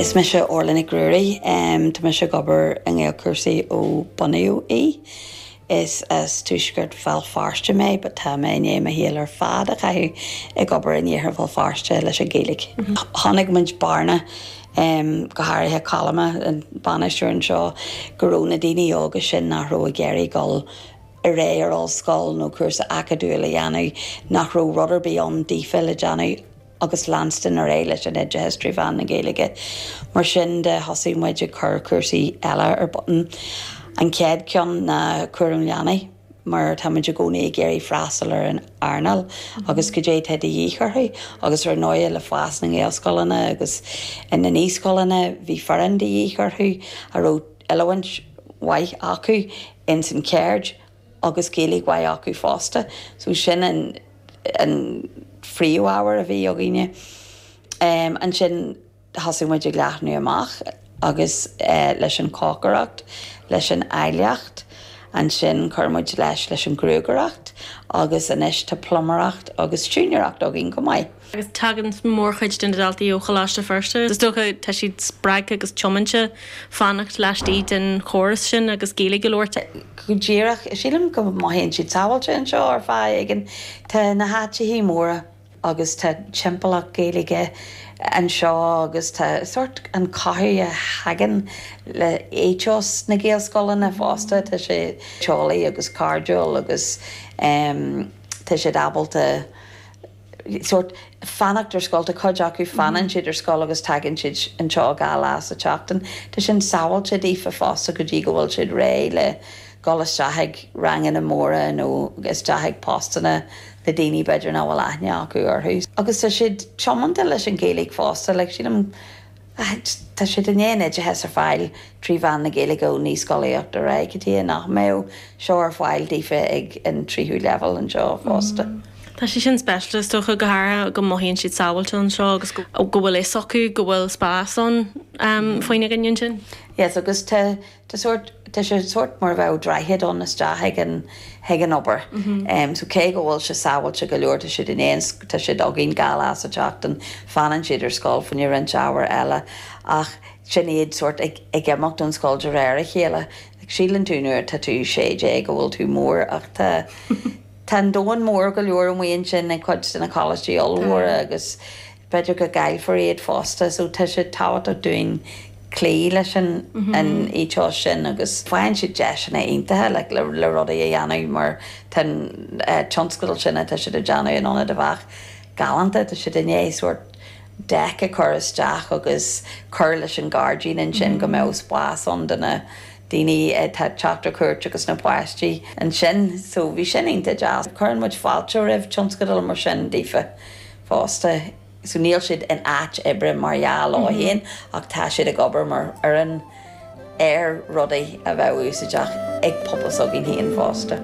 Is mise Orla Nic Ruairí. Tá mise ag obair i nGaelchúrsaí ó bunaíodh é. Is as tuaisceart Bhéal Feirste mé but tá mé i ndiaidh mo shaol ar fad a chaitheamh ag obair in iarthar Bhéal Feirste leis an Ghaeilge. Chonaic muid bearna, go háirithe Colm, an bainisteoir anseo, go raibh na daoine óga sin nach raibh ag iarraidh dul ar aghaidh ar ollscoil nó cúrsa acadúil a dhéanamh, nach raibh rud ar bith ann daofa le déanamh. agus leanstan ar aghaidh leis an oideachas trí mheán na Gaeilge. Mar sin de thosaigh muid ag cur cúrsaí eile ar bun. An chéad cheann ná cúram leanaí mar táimid i gcónaí ag iarraidh freastal ar an earnáil agus goidé atá de dhíth orthu agus ar ndóigh le fás na nGaelscoileanna agus na naíscoileanna bhí foireann de dhíth orthu a raibh oiliúint mhaith acu ins an cheird agus Gaeilge mhaith acu fosta. So sin an phríomhábhar a bhí againne. Ansin thosaigh muid ag leathnú amach agus leis an chócaireacht, leis an áilleacht, ansin chuir muid leis leis an ghruagaireacht agus anois tá pluiméireacht agus siúinéireacht againn chomh maith. agus tagann mórchuid de na daltaí ó Choláiste Feirste. Is dócha, tá siad spreagtha agus tiomanta fanacht laistigh den chóras sin agus Gaeilge a labhairt. Go díreach, sílim go mothaíonn siad sábháilte anseo ar fáth éigin. Tá na háiteanna móra agus tá timpeallacht Gaeilge anseo agus tá sórt an rud a thagann le éiteos na Gaelscoileanna fosta, tá sé teolaí agus cairdiúil agus tá siad ábalta, sórt fanacht ar scoil. Tá cuid acu, fanann siad ar scoil agus tagann siad anseo dhá lá sa tseachtain. Tá sin sábháilte daofa fosta go dtí go bhfuil siad réidh le dhul isteach chuig ranganna móra nó isteach chuig postanna le daoine b'fhéidir nach bhfuil aithne acu orthu. Agus tá siad tiomanta leis an Ghaeilge fosta. Like sílim. Ach tá siad i ndiaidh an t-oideachas a fháil trí mheán na Gaeilge ó naíscolaíocht ar aghaidh, cad tuige nach mbeadh seo ar fáil daofa ag an tríú leibhéal anseo fosta. Tá sé sin speisialta, is dócha, go háirithe go mothaíonn siad sábháilte anseo agus go bhfuil fhios acu go bhfuil spás ann faoina gcoinne ansin. Yes, agus tá Tá sórt, tá sé sórt mar a bheadh droichead ann isteach chuig an, chuig an obair. So cé go bhfuil sé sábháilte go leor, tá siad i ndiaidh, tá siad againn dhá lá sa tseachtain, fanann siad ar scoil fá choinne roinnt ábhar eile ach sin iad sórt ag, ag imeacht ón scoil de réir a chéile. Like síleann tú nuair atá tú sé déag go bhfuil tú mór ach tá, tá an domhan mór go leor amuigh ansin ag cuid de na coláistí ollmhóra agus. B'fhéidir go gcaillfear iad fosta so tá sé tábhachtach dúinn cloí leis an ethos sin agus faigheann siad deiseanna iontacha like le le rudaí a dhéanamh mar tá an tionscadal sin atá siad a dhéanamh in Ionad Eabhach galánta, tá siad i ndiaidh sórt deck a chur isteach agus cur leis an ghairdín ansin go mbeadh spás ann do na daoine atá ag teacht ar cuairt agus na páistí ansin so bhí sin iontach deas. Cuireann muid fáilte roimh tionscadal mar sin daofa. fosta so níl siad in áit oibre mar dhea leo féin ach tá siad ag obair mar fhoireann ar rudaí a bheadh úsáideach ag pobal s'againn féin fosta.